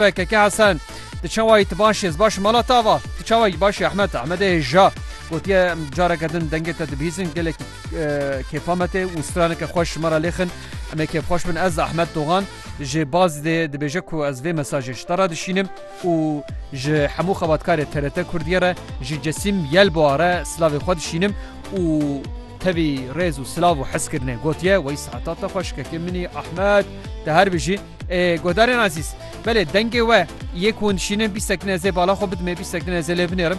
PKK Hesen Ti çawayî ti baş yê, ez baş mala ta va. Ti çawayî baş yê Ehmed, Ehmedê hê ja. Gotiye careke din dengê te dibihîzin gelekî e, kêfa me tê û straneke xweş ji me re lêxin. Em ê kêfxweş bin ez Ehmed Dogan ji bazî dê dibêje ku ez vê mesajê ji te re dişînim û ji hemû xebatkarê TRT Kurdiyê re ji Cesîm Yelboa re silavê xwe dişînim û tevî rêz û silav û hezkirinê gotiye wey saeta te xweşikekê minî Ehmed te her bijî. Guhdarên Azîz, belê dengê we yê ku hûn dişînin bîst sekine zê bala xwe bidin, me bîst sekine zê lê binêrin.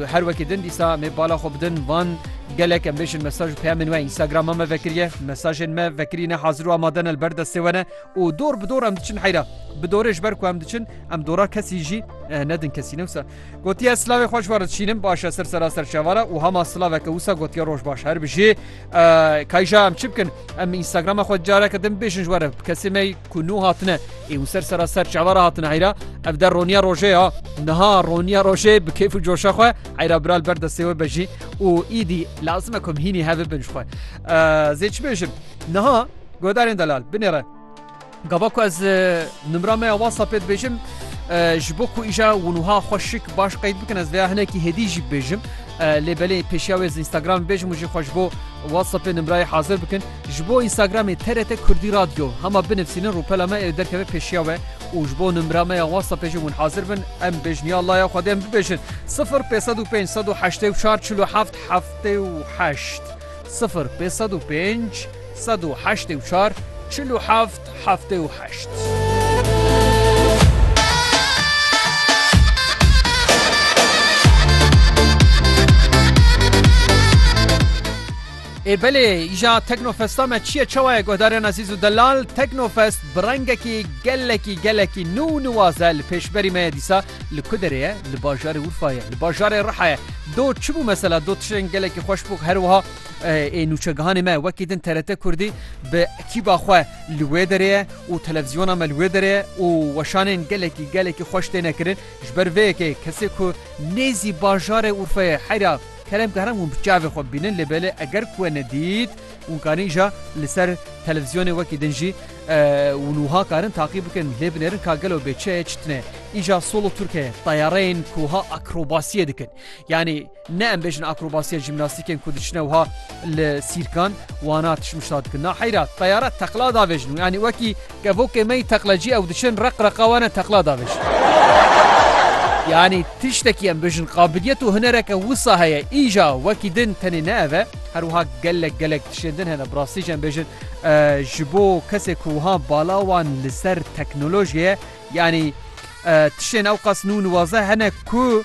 Her wekî din dîsa me bala xwe bidin van gelek em bêjin mesaj û peyamên we Instagrama me vekiriye. Mesajên me vekirîne hazir û amade ne li ber destê we ne û dor bi dor em diçin heyra. Bi dorê ji ber ku em diçin em dora kesî jî nedin kesî ne wisa. Gotiye silavê xwe ji we re dişînim baş e ser sera serçavara û hema silaveke wisa gotiye roj baş. Her bijî Kayja em çi bikin em Instagrama xwe careke din bêjin ji were kesê me ku nû hatine ê û ser sera ser çavara hatine heyra ev der roniya rojê ya niha roniya rojê bi kêf û coşa xwe heyra biral ber destê we bejî û îdî lazime ku hînî hev bin xwe zê çi bêjin niha godarên delal binêre Gava ku ez nimra me ya WhatsAppê dibêjim ji bo ku îja winuha xwe şik baş qeyd bikin ez vêya hinekî hêdî jî bibêjim lê belê pêşiya wê Instagram bêjim û jî xwe ji bo WhatsAppê nimrayê hazir bikin ji bo Instagramê TRT Kurdî Radyo hema binivsînin rûpela me ê derkeve pêşiya we û ji bo nimra me ya WhatsAppê jî win hazir bin em bêjniya Allah ya xwedê em bibêjin 05 105 184 47 78 sifir pê sed û pênc sed û heştê û çar çil û heft heftê û heşt. Ê belê îja Teknofesta me çi ye çawa ye guhdarên ezîz û delal Teknofest bi rengekî gelekî gelekî nû û niwaze li pêşberî me ye dîsa Li ku derê ye? Li bajarê Urfa ye, li bajarê Riha ye. Do çi bû mesela? Do tiştên gelekî xweş bû. Her wiha ê nûçegihanê me wekî din TRT Kurdî bi ekîba xwe li wê derê ye û televizyona me li wê derê ye û weşanên gelekî gelekî xweş têne kirin. Ji ber vê yekê kesê ku nêzî bajarê Urfeyê heyra kerem ke heram hûn bi çavê xwe bibînin lê belê eger ku we nedît, Hûn karin îja li ser televîzyonê wekî din jî û nuha karin taqî bikin lê binêrin ka gelo bê çi ye çi tune. Îja solo turk heye tayareyên ku wiha akrobasiyê dikin. Yanî ne em bêjin akrobasiya jîmnastîkên ku diçine wiha li sîrkan wana tişmişta dikin. Na heyra tayare teqla davêjin û yanî wekî Kevokê me yî teqlecî ew diçin req reqa wan e teqla davêjin. Yanî tiştekî em bijin qabiliyet û hunereke wisa heye îja wekî din tenê ne ev e herwiha gelek gelek tişên din hene bi rastî jî em bêjin ji bo kesê ku wiha bala wan li ser teknolojiyê ye yanî tişên ewqas nû niwaze hene ku